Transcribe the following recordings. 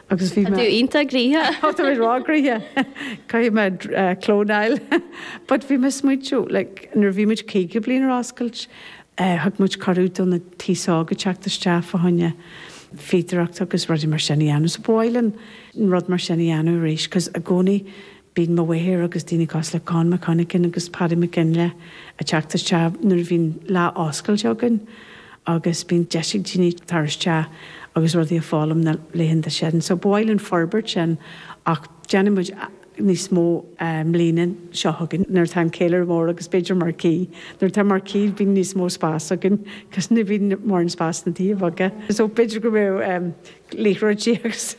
Agus bhí mé. Tá tú iontach gríosctha! Tá tú ag rá gríosctha! Caithfidh mé clónáil. But bhí mé ag smaointiú, like, nuair a bhí muid caoga bliain ar oscailt, thug muid cuireadh do na daoine óga teacht isteach fá choinne fíodóireacht agus rudaí mar sin a dhéanamh. So ba mhaith linn rud mar sin a dhéanamh arís 'cause i gcónaí Bíonn mo mháthair agus daoine cosúil le Con McConachan agus Paddy McGinley ag teacht isteach nuair a bhíonn lá oscailte againn agus bíonn deis ag daoine tar isteach agus rudaí a fhoghlaim na laethanta sin. So ba mhaith linn forbairt sin ach déanfaidh muid níos mó an bhliain seo chugainn nuair atá an ceiliúradh mór agus b'fhéidir marquee. Nuair atá marquee bíonn níos mó spás againn cos ní bhíonn mórán spás sna tithe beaga. So b'fhéidir go mbeidh. liathróid di agus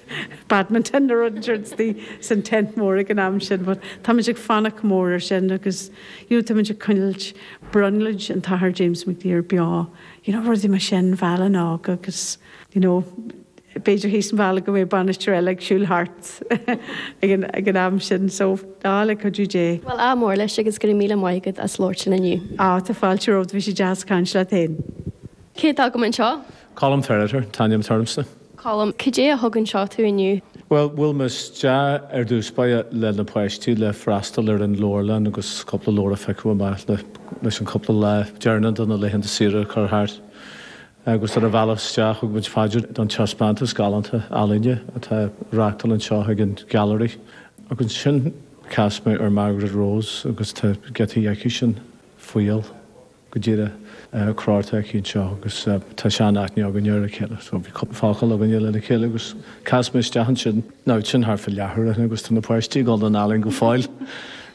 badminton nó rud ansin is bhí san tent mór ag an am sin but táimid ag fanacht mór ar sin agus táimid ag coinneáilt brionglóid an tAthair James McDyer beo you know rudaí mar sin bheal a' nGaeilge agus you know b'fhéidir thíos an bhealaigh go mbeidh bainisteoir eile ag siúl thart ag an am sin so le cuidiú Dé. Bhuel ádh mór leis agus go raibh míle maith agat as labhairt linn inniu. Á tá fáilte romhat bhí sé deas caint leat fhéin. Cé atá agam anseo? Colm Ferriter an t-ainm atá ormsa. Colm, Cad é a thug anseo tú inniu? Bhuel, bhuail mé isteach ar dtús báire le na páistí le freastal ar an leabharlann agus cúpla leabhar a phiocadh amach leis an cúpla lá deireanach de na laethanta saoire a chur thart. Agus ar an bhealach isteach thug muid faidear an taispeántas galánta ealaíne atá á reáchtáil anseo ag an Gallery. Agus ansin chas mé ar Margaret Rose agus tá giotaí aici sin faoi. go díreach ar chlár atá agat anseo agus tá sean-aithne againn ar a chéile so bhí cúpla focal againn lena chéile agus chas mé isteach ansin now sin thart fá leathuair ó shin agus tá na páistí ag dul don ealaín go fóill,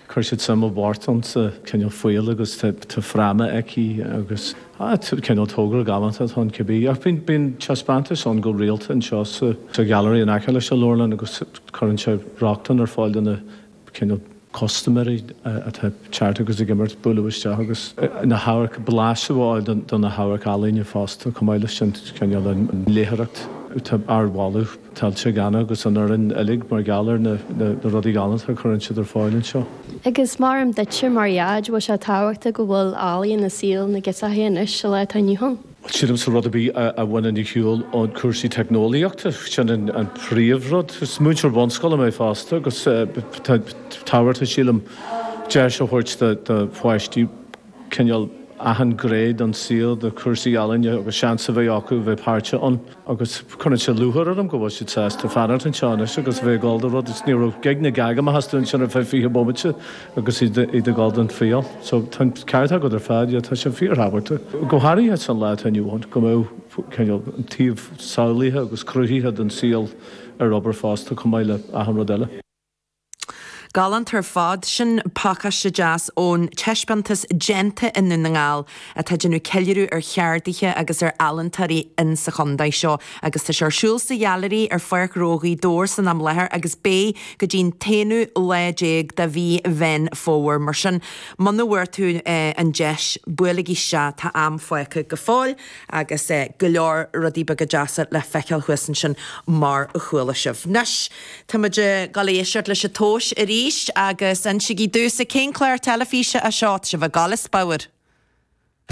chuir siad suim i bpíosa amháin sa cineál fuíoll agus tá fráma aici agus ah cineál togra galánta atá ann cibé ach bíonn, bíonn taispeántais ann go rialta anseo sa Gallery in aice leis an leabharlann agus cuireann sé rochtain ar fáil do na cineál custaiméirí atá ag teacht agus ag imeacht, bualadh isteach agus na hamharc, blaiseadh a fháil de na hamharcealaíona fosta. Chomh maith leis sin, cineál an léitheoireacht, tá ardmholadh tuillte ag Anna agus an fhoireann uilig mar gheall ar na rudaí galánta a chuireann siad ar fáil anseo. Agus maram duitse mar dhad, bhfuil sé tábhachtach go bhfuil ealaín i saol na ngirseachaí anois sa lá atá inniu ann? Sílimse rud ar bith a bhaineann ar shiúl ón cúrsaí teicneolaíochta, sin an príomh rud. Is múinteoir bunscoile mé fosta agus tá tábhachtach, sílim, deis a thabhairt do pháistí cineál achan ghné den saol, do chúrsaí ealaíne agus seans a bheith acu a bheith páirteach ann. agus cuireann sé lúcháir orm go bhfuil siad sásta fanacht anseo anois agus a bheith ag dul do rud, ní raibh gíog ná geaig amach astu ansin ar feadh fiche bomaite agus iad ag dul don tsaol so tá an ceart agat ar fad, yeah tá sé fíorthábhachtach, go háirithe sa lá atá inniu ann, go mbeadh cineál an taobh samhlaithe agus cruthaithe den saol ar obair fosta chomh maith le achan rud eile. Galánta ar fad. Sin pacáiste deas ón taispeántas Déanta i nDún na nGall atá ag déanamh ceiliúradh ar cheardaithe agus ar ealaíntóirí in sa chondae seo agus tá sé ar siúl sa Ghailearaí ar Pháirc Ghnó Ghaoth Dobhair san am láthair agus beidh go dtí an t-aonú lá déag de mhí Mheán Fómhair mar sin muna bhfuair tú an deis buailigí isteach tá am fágtha go fóill agus go leor rudaí beaga deasa le feiceáil thuas ansin mar a chuala sibh. Anois. Tá muid ag dul a éisteacht leis an tomhas arís agus insígí domhsa cén clár teilifíse é seo, sibh a gcall is bodhar.